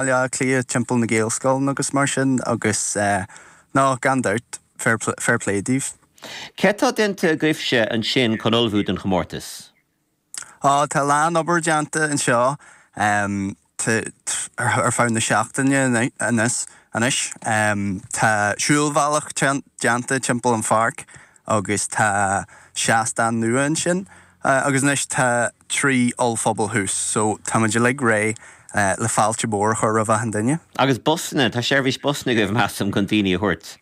Bhaile Átha Cliath timpeall na Gaelscoileanna agus mar sin agus no, gan dabht, fair play daoibh. Céard tá déanta agaibhse ansin chun ullmhú don chomórtas? Ó, tá a lán obair déanta anseo ar feadh na seachtaine anois. Tá siúlbhealach déanta timpeall an pháirc agus tá seastán nua ansin agus anois tá trí ollphuball thuas so táimid uilig réidh le fáilte mhór a chur roimh achan duine. Agus busanna, tá seirbhís busanna agaibh measaim chun daoine a thabhairt?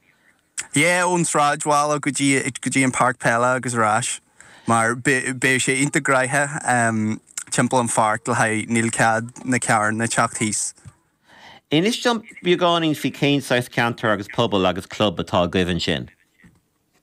Yeah, ón sráidbhaile go dtí go dtí an páirc peile agus ar ais mar beidh sé iontach gnoitheach timpeall an pháirc le haghaidh, níl cead na carranna teacht thíos. Inis dom beagáinín faoi cén saghas ceantar agus pobal agus club atá agaibh ansin?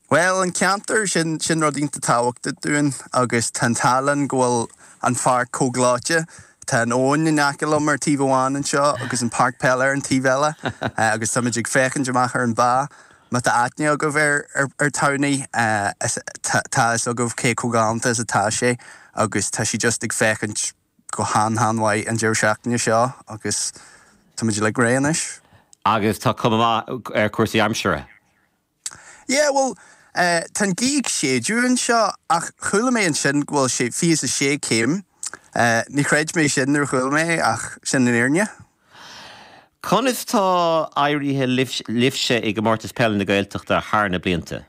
Bhuel, an ceantar, sin sin rud iontach tábhachtach dúinn agus tá an t-ádh linn go bhfuil an pháirc chomh gleoite. Tá an abhainn in aice liom ar taobh amháin anseo agus an páirc peile ar an taobh eile agus táimid ag féachaint amach ar an bhá. Má tá aithne agaibh ar ar Towney, tá fhios agaibh cé chomh galánta is atá sé agus tá sí just ag féachaint go han-han-mhaith an deireadh seachtaine seo agus táimid uilig réidh anois. Agus tá cuma mhaith ar chúrsaí aimsire. Yeah, bhuel, eh, tá an gaoth ag séideadh anseo ach chuala mé ansin go bhfuil sé fiche is a sé céim. Eh, ní chreid mé sin nuair a chuala mé é ach sin an fhírinne. Conas tá éiríthe libhse i gComórtas Peile na Gaeltachta thar na blianta?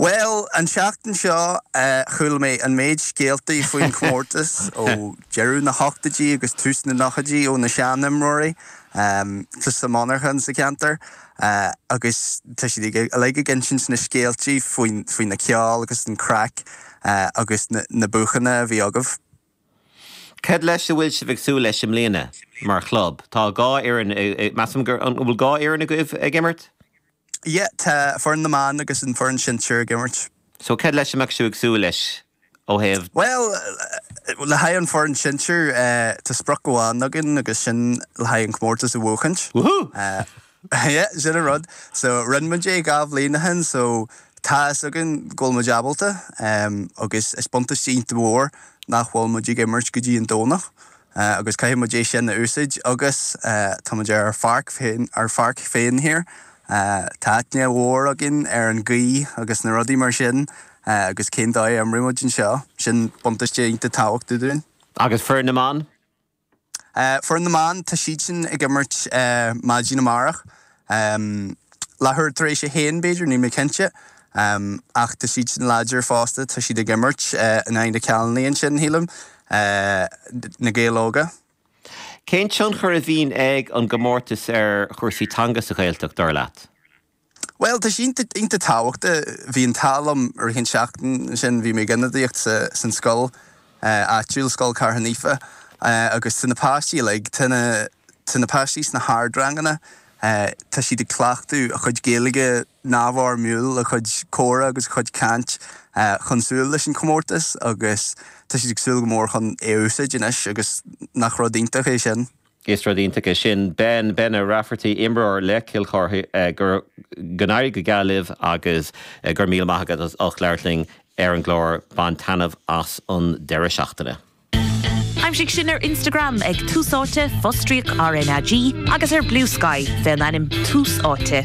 Bhuel, an tseachtain seo, chuala mé an méid scéaltaí faoin chomórtas ó deireadh na hochtaidí agus tús na nochaidí ó na sean-imreoirí, ó lucht na monarchan sa cheantar, agus tá siad uilig ag insint na scéaltaí faoi na ceoil agus an craic agus na buachanna a bhí agaibh. Cad leis a bhfuil sibh ag súil leis i mbliana mar chlub? Tá dhá fhoireann, measaim gur, an bhfuil dhá fhoireann agaibh ag imirt? Yeah, tá foireann na mban agus an foireann sinsir ag imirt. So, cad leis a mbeadh sibh ag súil leis ó thaobh. Bhuel, le haghaidh an foireann sinsir, tá sprioc amháin againn agus sin le haghaidh an comórtas a bhuachaint. Woohoo! Yeah, sin an rud. So, rinne muid é dhá bhliain ó shin so tá fhios againn go bhfuil muid ábalta agus is buntáiste iontach mhór nach bhfuil muid ag imirt go dtí an Domhnach agus caithfidh muid é sin a úsaid agus tá muid ar ár pháirc féin, ár pháirc féin thiar, tá aithne mhór againn ar an gaoth agus na rudaí mar sin agus cén dóigh a imreoidh muid anseo, sin buntáiste iontach tábhachtach dúinn. Agus foireann na mban? Foireann na mBan, Tá siadsan ag imirt maidin amárach. Leathuair tar éis a haon, b'fhéidir, níl mé cinnte. Ach tá siadsan láidir fosta, tá siad ag imirt in aghaidh na Cealla ansin, shílim. Na Gaeil Óga. Cén tionchar a bhíonn ag an gcomórtas ar chúrsaí teanga sa Ghaeltacht, dar leat? Bhuel, tá sé iontach tábhachta. Bhí an t-ádh liom i rith an tseachtain sin, bhí mé ag ionadaíocht san scoil áitiúil, Scoil Chartha Naofa, agus na páistí uilig, tá na páistí sna hardranganna, tá siad ag cleachtadh a chuid Gaeilge neamhfhoirmiúil, a chuid comhrá agus a chuid caint chun súil leis an chomórtas agus tá siad ag súil go mór chun é a úsáid anois agus nach rud iontach é sin. Is rud iontach é sin. Ben, Bene Rafferty, imreoir le Cill Charthaigh, Go n-éirí go geal libh agus go raibh míle maith agat as ucht labhairt linn ar an gclár. Bain taitneamh as an deireadh seachtaine. Aimsigh sinn ar Instagram ag Tús Áite, Fostríoc RnaG, agus ar Bluesky fé an ainm Tús Áite.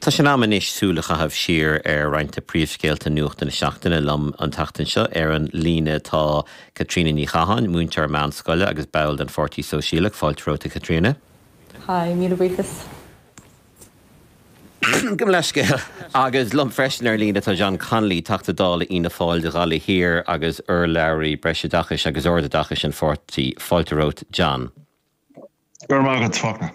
Tá sé in am anois súil a chaitheamh siar ar roinnt de príomhscéalta nuachta na seachtaine. Liom an tseachtain seo ar an líne tá Caitríona Ní Chatháin, múinteoir meánscoile agus ball den Pháirtí Sóisialach, fáilte romhat a Chaitríona. Hi, míle buíochas. Gabh mo leithscéal. Agus liom freisin ar líne tá John Connolly, Teachta Dála Fhianna Fáil do Ghaillimh Thiar agus urlabhraí Breisoideachais agus Ardoideachais an pháirtí, fáilte romhat John. Go raibh maith agat, Fachtna.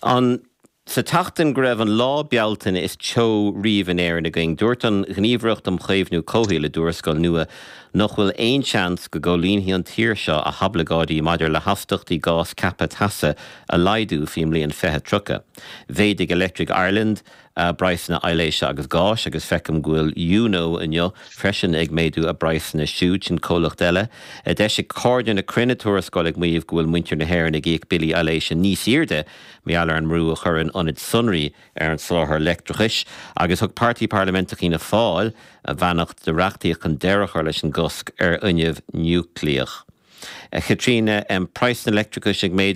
Ansa tseachtain go raibh an lá Bealtaine is teo riamh in Éirinn againn. Dúirt an Ghníomhaireacht um Chaomhnú Comhshaoil i dtuarascáil nua nach bhfuil aon tseans go gcomhlíonfaidh an tír seo a hoibleagáidí maidir le hastachtaí gás ceaptha teasa a laghdú faoin mbliain 2030. Mhéadaigh Electric Ireland, praghsanna aibhléise agus gáis agus feicim go bhfuil Yuno inniu freisin ag méadú a bpraghsanna siúdsan comhlacht eile. D'eisigh Cairde na Cruinne tuarascáil ag maíomh go bhfuil muintir na hÉireann ag íoc billí aibhléise níos airde mar gheall ar an mbrú a chuireann ionaid sonraí ar an soláthar leictreachais agus thug Páirtí Parlaiminteach Fhianna Fáil a bheannacht do reachtaíocht chun deireadh a chur leis an gcosc ar fhuinneamh núicléach. A Chaitríona, Em, praghsanna leictreachais ag méadú.